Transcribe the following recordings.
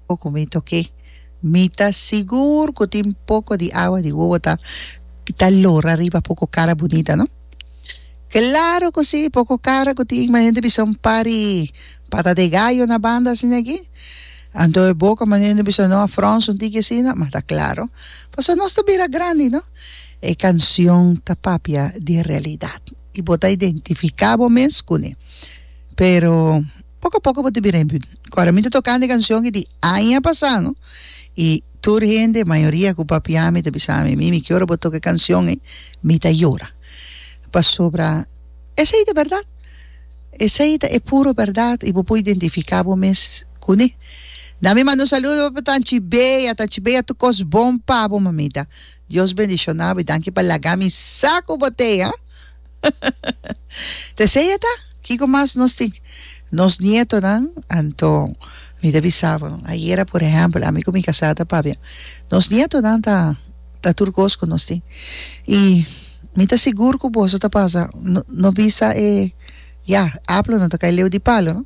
Bo cu mi toke. Mi ta sigur cu tin poco di awa di wowo ta ta lora riba poco cara bunita, no? Claro cu si, poco cara cu tin mas hende bisa un par di pata de gallo na banda asina aki. Anto e boca mas hende bisa no a fronsa un tiki asina, ma ta claro pasobra nos ta bira grandi, no? E cancion ta papia di e realidad y bo ta identifica bo mes cune. Pero. Poco a poco bo ta bira e building. Cuando mi ta tocando e cancion y di aña pasado y tur hende, mayoria cu papiami ta bisami, Mimi que ora bo toca e cancion ey mi ta yora. Pasobra esey ta berdad. Esey ta e puro berdad y bo por identifica bo mes cune. Dami manda un saludo pa Tanchi Bea. Tanchi Bea tur cos bon pabo mamita. Dios bendiciona bo y danki pa laga mi sa cu bo tey, ah. Ta esei ata? Kiko mas nos tin? Nos nietonan, anto mi ta bisa bo, ayera por ehèmpel, ami ku mi kasá ta pabia, nos nietonan ta ta tur kos ku nos tin. I mi ta sigur ku boso ta pasa, no no bisa e, ya, apel no ta kai leu di palu, no,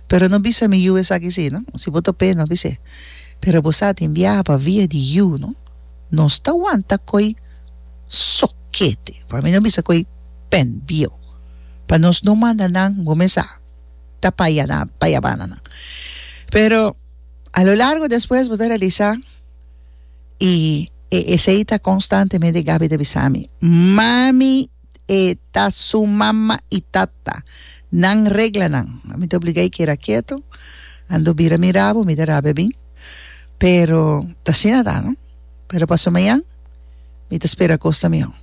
pero no bisa mi yu esaki si, no, si bo top'é no bis'é. Pero bo sa tin biaha pa via di yu, no, nos ta wanta koi. Sokete, pa mi no bisa koe pen bieu pa nos no manda nan gomesa ta payana payabana nan pero a lo largo despues bo ta realisa y e esey ta constantemente Gaby ta bisami mami e ta su mama y tata nan regla nan mi ta obligay keda keto ando bira mirabo mi ta rabia bin pero ta asina ta no. Pero paso mañan mi ta spera kos ta mihó.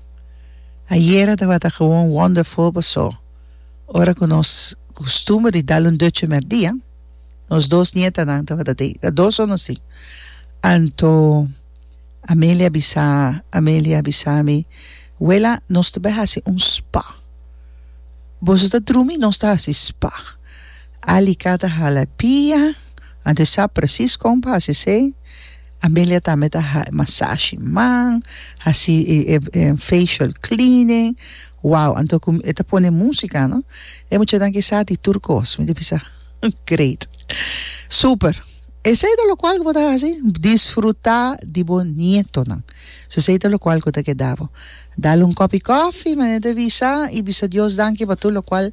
Ayera tabata gewoon wonderful pasó ora ku nos kustumber di dal un dutje merdia, nos dos nietanan tabata tei. Ta dos ora nos tin. Anto Amelia bisa Amelia bisa mi, Wela, nos ta bai hasi un spa. Boso ta drumi nos ta hasi spa. Alicata hala pia, anto e sa presis kon pa hasi esei. Amelia tambe ta haci masashi man, haci e facial cleaning, wow, anto cu e ta pone musica no, e muchanan ki sa di tur cos, mi ta bisa great, super, esey ta locual cu bo ta haci, disfruta di bo nietonan, so esey ta locual cu ta keda bo, dal un copi coffee manera ta bisa y bisa Dios danki pa tur locual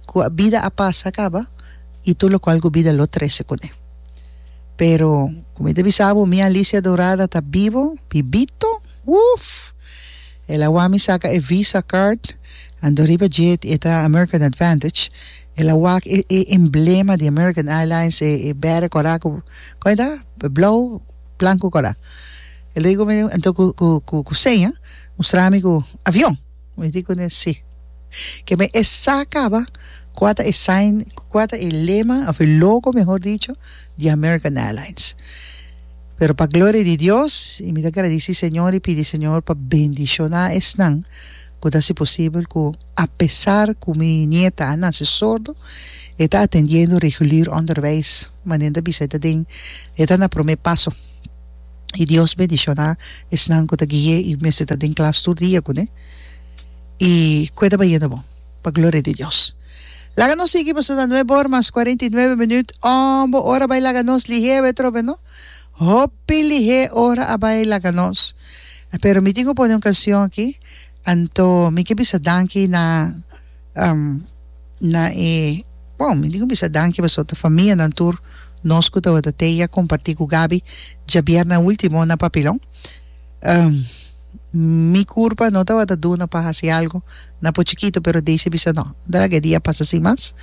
cu bida a pasa caba y tur locual cu bida lo trece cune. Pero, ku mi ta bisa bo, mi Alicia Dorada ta bibo, bibito! Uff! El a wou mi saka e Visa card, anto riba dje e ta American Advantage, el a wak e e emblema di American Airlines, e e bere kora ku, kon e ta? Blou, blanku kora. El a diku mi, anto ku ku ku seña, mustra mi ku avion! Mi rikuné sí. Ke mi e sa kaba kua ta e sign, kua ta e lema òf e logo mehor dicho di American Airlines. Pero pa gloria di Dios i mi ta gradisí Señor i pidi Señor pa bendishoná esnan ku ta hasi posibel ku apesar ku mi nieta a nase sordo e ta atendiendo regulier onderwijs manera ta bisa e ta den e ta na promé paso. i Dios bendishoná esnan ku ta gui'é i mester ta den klas tur dia kuné i ku e ta bayendo bon pa gloria di Dios. Laga nos sigui pasobra ta nuebe or mas kuarenta i nuebe minüt. Ombo ora bai laga nos lihé awe trobe no? Hopi lihé ora a bai laga nos. Pero mi tin ku pone un kanshon aki, anto mi ke bisa danki na. na e bon mi dico bisa danki paso ta famianan tur nos cu tabata tei a comparti cu Gaby djabierna ultimo na papilon mi curpa no tabata duna pa haci algo na por chikito pero Daisy bisa no ta laga e dia pasa sin mas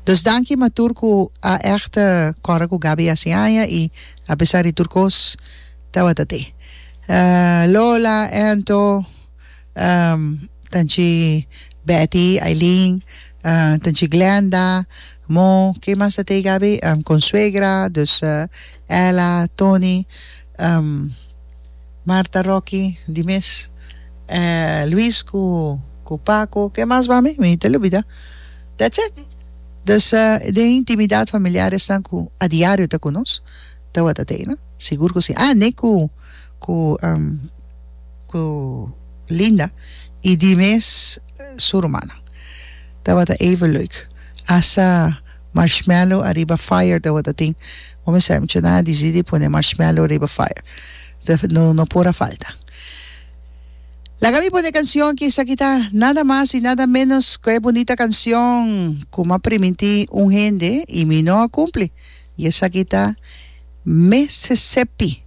dus danki ma tur cu a echt cora cu Gaby haci aña y apesar di tur cos tabata tei Lola Anto. Tanchi Betty, Eileen, tanchi Glenda, Mo, ke mas ta tei Gaby? Consuegra, dus Ella, Tony, Marta, Rocky, di mes, Luis ku ku Paco, ke mas mami? Mi ta lubida. That's it. Dus den intimidad familiar esnan ku a diario ta ku nos, tabata tei no? Sigur ku si. Ah, ne ku. ku ku Linda i di mes su rumannan. Tabata even leuk. Hasta marshmallow ariba fire tabata tin. Bo mi sa mucha nan a disidi pone marshmallow riba fire. No no por a falta. Laga mi pone e kansion aki esaki ta nada mas i nada menos ku e bunita kansion ku mi a primintí un hende i mi no a kumpli. Y esaki ta Mississippi.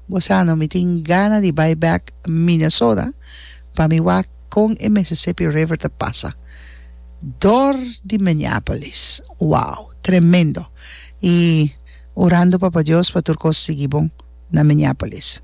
Bo sa no mi tin gana di bay back Minnesota pa mi wak con e Mississippi River ta pasa door di Minneapolis. Wow! Tremendo! Y orando Papa Dios pa tur cos sigui bon na Minneapolis.